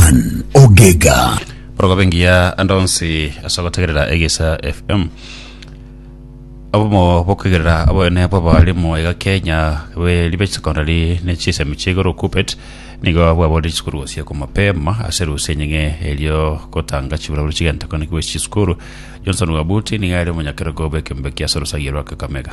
Ann Ogega. Borogobe ngiya ande onsi ase ogotegerera Egesa FM. Abomo bokuigerera aboene bw'abarimu iga Kenya be ribe secondary ne chisemi chigoro kupet nigo bwaborire chisukuru gosia kwa mapema ase rusia enying'e erio gotanga chiburabura chigenta konekiwa ase chisukuru. Johnson Wabuti nigo are omonyakerogo bw'ekembe kia ase orosagi rwa Kakamega.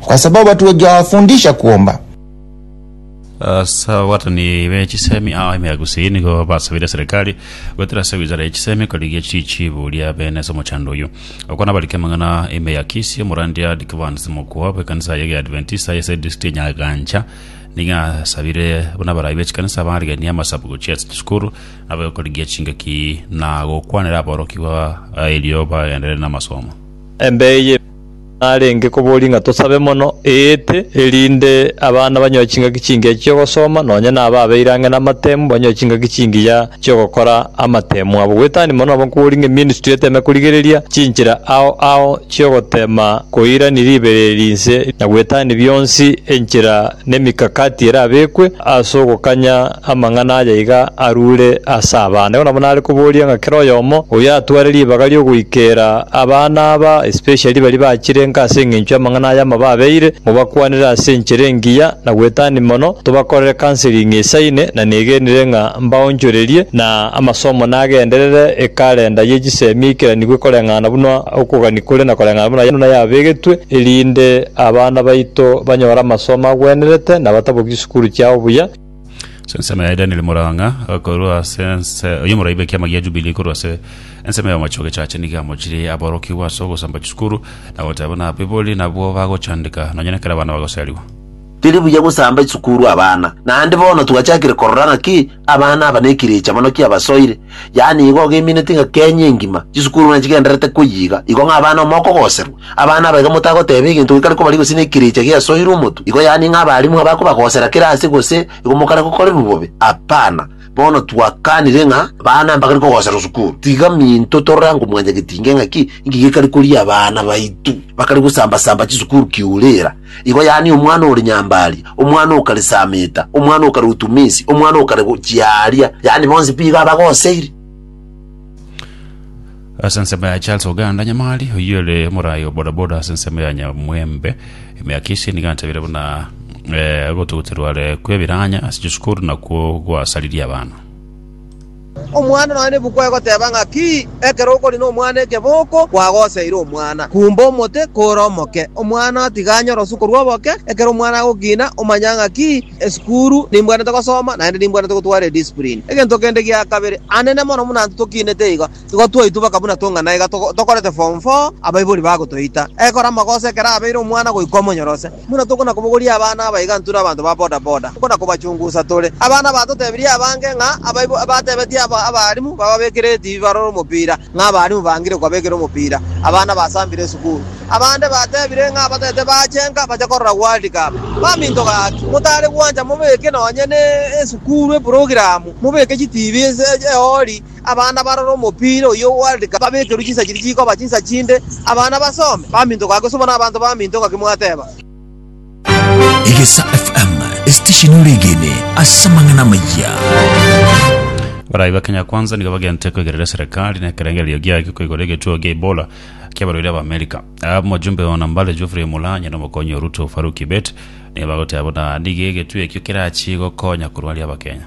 kwa sababu hatujawafundisha kuomba. Ase abagoatani be chisemi ao ime ya Gusii nigo basabire serikali goetera ase wizara ya chisemi korigia chichibu ria bene ase omochando oyio. Okwo nabarikire amang'ana ime ya Kisii, omorandia Dicvans Mokua bw'ekanisa ya Kiadventista ase edistrict ya Nyagancha nigo asabire buna abarai be chikanisa barigenie amasabu gochia ase chisukuru nabo gokorigia chingaki na gokwanera aborokigwa erio bagenderere namasomo. Embeyo. narenge koboria ng'a tosabe mono eete, erinde abana banyore chingaki chingiya chi'ogosoma, nonya na aba abeire ang'e namatemu banyore chingaki chingiya chi'ogokora amatemu abo. Goetania mono nabo nkoboria ng'a eministry eteme korigereria chinchera ao ao chi'ogotema koirania ribereri inse na goetania bionsi enchera nemikakati erabekwe ase ogokanya amang'ana aya iga arure ase abana. Igo nabo nare koboria ng'a kera oyomo oyio atware ribaga ri'ogoikera abana aba, especially baria bachirenka ase engencho y'amang'ana aya amababeire, mobakwanere ase enchera engiya na gwetania mono, tobakorere counseling esaine, na negenire ng'a mbaonchorerie na amasomo nagenderere ekalenda ye chisemi eikeraniwe koreng'ana buna okogania kore na koreng'ana buna yabegetwe, erinde Abana baito banyore amasomo agwenerete na batabokie chisukuru chiao buya. Ase ensemo yaye Daniel Murang'a, korwa ase ense y'omoraibe ekiama gia Jubilee korwa ase ensemo y'omochie ogechacha nigo amochirie aborokigwa ase ogosamba chisukuru na goteba buna abaibori nabwo bagochandeka nonya nekero abana bagoseriwa. Teri buya gosamba chisukuru abana, naende bono twachakire korora ng'aki Abana aba nekirecha mono kiabasoire, yaani igo ogeimineti ng'a Kenya engima chisukuru buna chigendererete koyiga, igo ng'a abana amo mokogoserwa. Abana aba iga motagoteba eginto gekare kobarigia gose nekirecha giasoirwe omotu, igo yaani ng'a abalimu abakobagosera kera ase gose igo mokare gokorerwa bobe. Apana. Bono twakanire ng'a abana mbakare kogoserwa sukuru, tiga minto torore ango mwanyagetinge ng'aki inki gekare koria abana baito bakare gosamba-samba chisukuru kiurera. Igo yaani omwana ore nyambaaria, omwana o kare Sameta, omwana o kare o Tumisi, omwana o kare gochia aaria, yaani bonsi mbigo abagoseiri. ase ensemo ya Charles Oganda Nyamari oyio ore omoraai o bodaboda ase ensemo ya Nyamwembe emiaka esie nigo antabire buna eh, ogotogoterwa are kw'ebiranya ase chisukuru nakwo gwasaririe abana Omwana nonya nebuku egoteba ng'a ki, ekero okori nomwana ekeboko kwagoseire omwana. Kumba omote kore omoke, omwana otiga anyore osu korwa oboke. Ekero omwana agokina, omanya ng'a ki, esukuru nimbwanete gosoma naende nimbwanete gotwara ediscipline. Egento kende gia kabere, anene mono buna intwe tokinete igo, igo twaitwa baka buna tong'ana iga tokorete form four abaibori bagotoita. Ekero amagoso ekero abeire omwana goika omonyorosia. Buna tokona kobogoria abana abaigantu na abanto ba boda boda, tokona kobachungusa tore. Abana batotebirie abange ng'a abaibo batebetie abarimu bababekere etibi barore omopira, ng'a abarimu bangire kobabekera omopira abana basambire esukuru. Abande batebire ng'a abatete bachenka bache korora World Cup. Baminto gaki, motare gwancha mobeke nonye ne esukuru eprogiramu, mobeke chitibi ase eori. Abana barore omopira oyio o World Cup babekerwe chinsa chiria chikoba chinsa chinde, abana basome, bamintoka ake sobo nabanto baminto ngaki mwateba. Egesa FM, esitesheni oregene ase amang'ana amayia. Barai ba Kenya Kwanza nigo bagente kwegerera serikali na ekerengererio giaye kwigoro egetuo gia Ebola kiabarwaire ba Amerika. Omojumbe ah, ona Mbale Geoffrey Mulanya na omokonyi Ruto Farouk Kibet nigo bagoteba buna nigo egetuo ekio kerachie gokonya korwaria Abakenya.